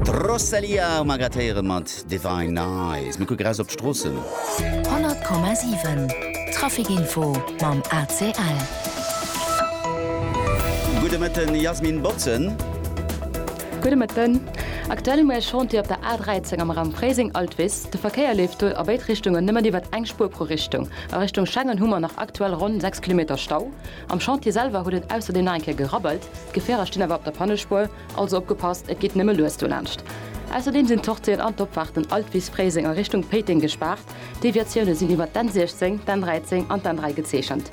D'Rosalía um Agathe héieren mat Divine Eyes. Mir kucken eraus op d'Stroossen. 100,7 Trafic Info mam ACL. Gudde Mëtten Jasmin Botzen. Gudde Mëtten. Aktuell hu mir e Chantier op der A13 am Raum Fréiseng-Altwis. De Verkéier leeft do a béid Richtungen nëmmen iwwert eng Spuer pro Richtung. A Richtung Schengen hu mer nach aktuell ronn 6 Kilometer Stau. Am Chantier selwer huet et ausserdeem nach eng Kéier gerabbelt. D'Gefierer stinn awer op der Pannespuer, also opgepasst, et geet nëmme lues dolaanscht. Ausserdeem sinn d'Sortien an d'Opfaarten Altwis-Fréiseng a Richtung Péiteng gespaart. D'Deviatioune sinn iwwer d'N 16, d'N 13 an d'N 3 gezeechent.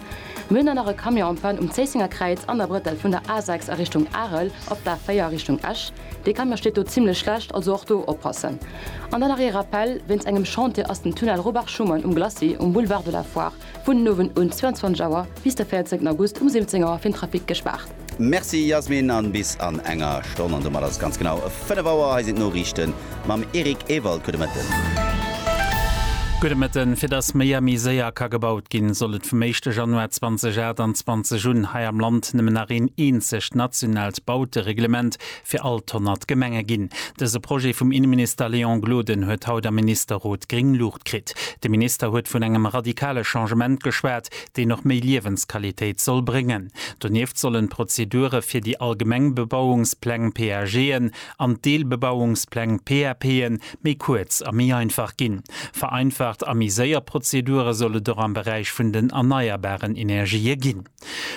Mir hunn dann nach e Camion en panne um Zéissenger Kräiz an der Brëttel vun der A 6 a Richtung Arel op d'A 4 a Richtung Esch. Dee Camion steet do zimmlech schlecht, also och do oppassen. An dann nach ee Rappell, Wéinst engem Chantier ass den Tunnel Robach-Schuman um Glacis um Boulevard de la Foire Vun den Owend un 22 Auer bis de 14 August um 17 Auer fir den Trafic gespaart. Merci Yasmin an bis an enger Stonn an domat ass et ganz genau 5 Auer. Hei sinn d'Noriichten mam Eric Ewald. Gudde Mëtten. Gudde Mëtten. Fir datt méi a méi séier ka gebaut ginn, soll et vum éischte Januar 2028 un hei am Land nëmmen nach een eenzegt nationaalt Bautereglement fir all d'honnert Gemenge ginn. Dëse Projet vum Inneminister Léon Gloden huet haut am Ministerrot gréng Luucht kritt. De Minister huet vun engem radikale Changement geschwat, deen och méi Liewensqualitéit soll bréngen. Donieft sollen d'Prozedure fir déi allgemeng Bebauungspläng, PAGen, an d'Deelbebauungspläng, PAPen, méi kuerz a méi einfach ginn. Vereinfacht a méi séier Prozedure soll et och am Beräich vun den erneierbaren Energië ginn.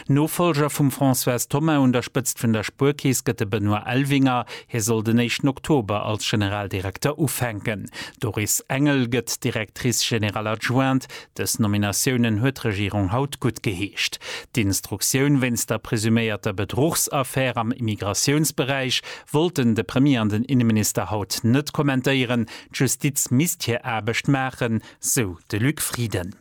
Nofollger vum Françoise Thoma un der Spëtzt vun der Spuerkeess gëtt de Benoît Elvinger. Hie soll den éischten Oktober als Generaldirekter ufänken. D'Doris Engel gëtt Directrice générale adjointe. Dës Nominatiounen huet d'Regierung haut guttgeheescht. D'Instruktioun wéinst der presuméierter Bedruchsaffär am Immigratiounsberäich wollten de Premier an den Inneminister haut net kommentéieren. D'Justiz misst hir Aarbecht maachen, sou de Luc Frieden.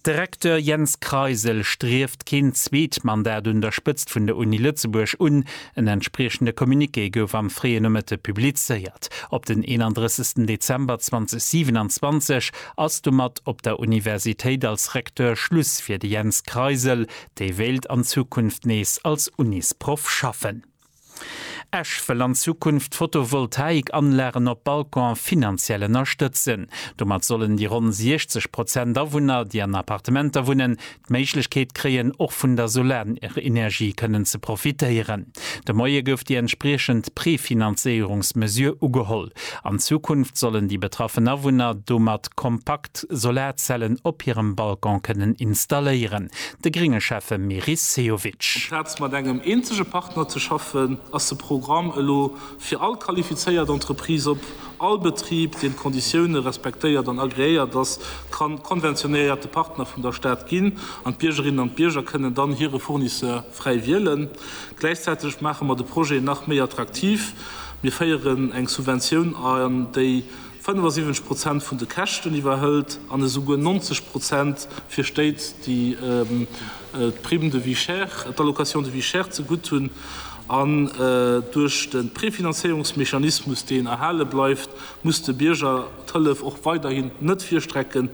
De Recteur Jens Kreisel strieft keen zweet Mandat un der Spëtzt vun der Uni Lëtzebuerg un. En entspriechende Communiqué gouf am fréie Nomëtte publizéiert. Op den 31 Dezember 2027 ass domat op der Universitéit als Recteur Schluss fir de Jens Kreisel. Dee wéilt an Zukunft nees als Unisproff schaffen. Esch wëll an Zukunft Photovoltaik-Anlagen op Balconen finanziell ënnerstëtzen. Domat sollen déi ronn 60 Prozent Awunner, déi an Appartementer wunnen, d'Méiglechkeet kréien, och vun der Solarenergie kënnen ze profitéieren. De Moie gouf déi entspriechend Prefinanzéierungsmesure ugeholl. An Zukunft sollen déi betraffen Awunner domat kompakt Solarzellen op hirem Balcon kënnen installéieren. De grénge Schäffe Meris Sehovic. Amplaz mat engem eenzege Partner ze schaffen, ass de Programm elo fir all qualifizéiert Entreprise op. All Betrib, deen d'Konditioune respektéiert an agreéiert ass, ka konventionéierte Partner vun der Stad ginn an d'Biergerinnen an d'Bierger kënnen dann hire Fournisseur fräi wielen. Gläichzäiteg maache mer de Projet nach méi attraktiv. Mir féieren eng Subventioun an, déi 75 Prozent vun de Käschten iwwerhëlt an esouguer 90 Prozent fir Stéit, déi d'Prime de vie chère, d'Allocation de vie chère ze gutt hunn. An duerch de Prefinanzéierungsmechanismus, deen erhale bleift, muss de Bierger d'Hëllef och weiderhin net virstrecken.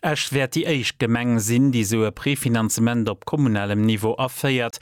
Esch wäert déi éischt Gemeng sinn, déi esou e Prefinanzement op kommunalem Niveau aféiert,